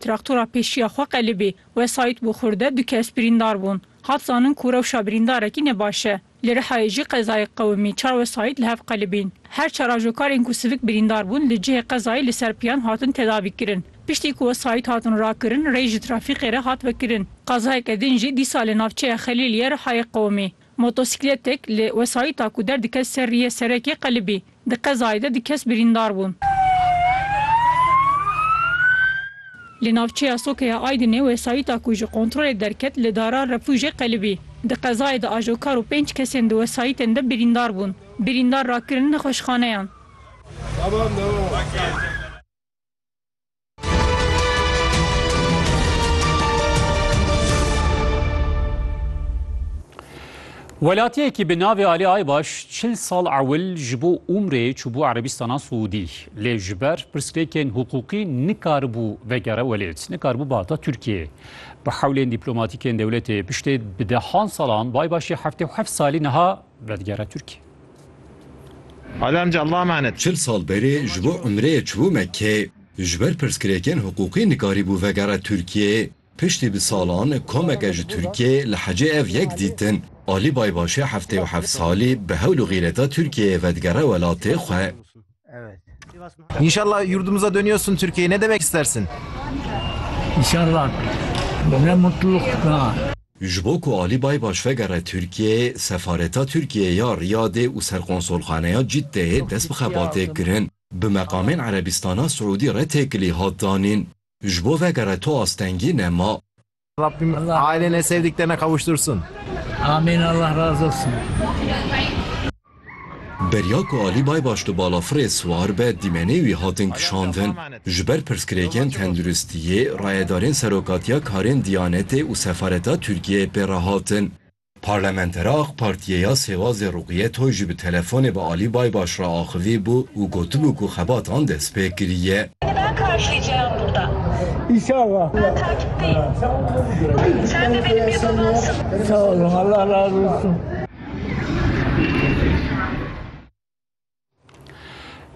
Traktora pêşiya xwe qelibî, wesayît bû xurde, du kes birîndar bûn. Hat zanin ku rewşa birîndarekî ne baş e. Li Rihayê jî qezayek qewimî, çar wesayît li hev qelibîn. Her çar ajokarên ku sivik birîndar bûn li cihê qezayê li ser piyan hatin tedavîkirin. Piştî ku wesayît hatin rakirin, rê ji trafîkê re hat vekirin. Qazayeke din jî dîsa li navçeya Xelîliyê Rihayê qewimî. Motosîkletek li wesayîta ku derdikevt ser riyê serekê qelibî. Di qezayê de du kes birîndar bûn. Li navçeya Soke ya Aydinê wesayîta ku ji kontrolê derket li dara refûjê qelibî. Di qezayê de ajokar û pênc kesên di wesayîtên de birîndar bûn. Birîndar rakirin nexweşxaneyan. Welatiyekî bi navê Ali Aybaş çil sal ewil ji bo Umrê çûbû Erebîstana Siûdî. Lê ji ber pirsgirêkên hiqûqî nikaribû vegere welêt, nikaribû bihata Tirkiyeyê. Bi hewlên dîplomatîkên dewletê piştê bi dehan salan bi Aybaşê heftê û heft salî niha Dadgera Tirk Ali Amca Allah'a emanet. Çil sal berê ji bo umreyê çûbû Mekkê. Ji ber pirsgirêkên hiqûqî nikarîbû vegere Tirkiyê. Piştî bi salan komeke ji Tirkiyê li hecê ev yek dîtin. Ali Baybaşê heftê û heft salî bi hewl û xîreta Tirkiyeyê vedigere welatê xwe. Evet. İnşallah yurdumuza dönüyorsun Türkiye'ye. Ne demek istersin? İnşallah. Ne mutluluk. Ha. Ji bo ku Alî Baybaş vegere Tirkiyeyê, Sefareta Tirkiyeyê ya Riyadê û Serkonsolxaneya Ciddeyê dest bi xebatê kirin. Bi meqamên Erebîstana Siûdî re têkilî hat danîn. Ji bo vegere tu astengî nema. Rabbim ailene sevdiklerine kavuştursun. Amin Allah razı olsun. Beriya ku Alî Baybaş di balafirê siwar be dîmenê wî hatin kişandin. Ji ber pirsgirêkên tenduristiyê, rayedarên Serokatiya Karên Diyanetê û Sefareta Tirkiyeyê pê re hatin. Parlamentera AK Partiyê ya Sêwazê Ruqiye Toy jî bi telefonê bi Alî Baybaş re axivî bû û gotibû ku xebatan dest pê kiriye.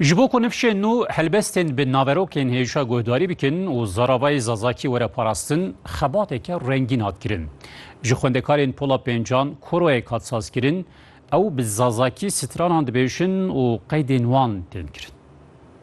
Ji bo ku nifşên nû helbestên bi naverokên hêrişa guhdarî bikin û zaravayê Zazakî were parastin, xebateke rengîn hat kirin. Ji xwendekarên Pola Pêncan koroyek hat sazkirin, ew bi Zazakî stranan dibêjin û qeydên wan tên kirin.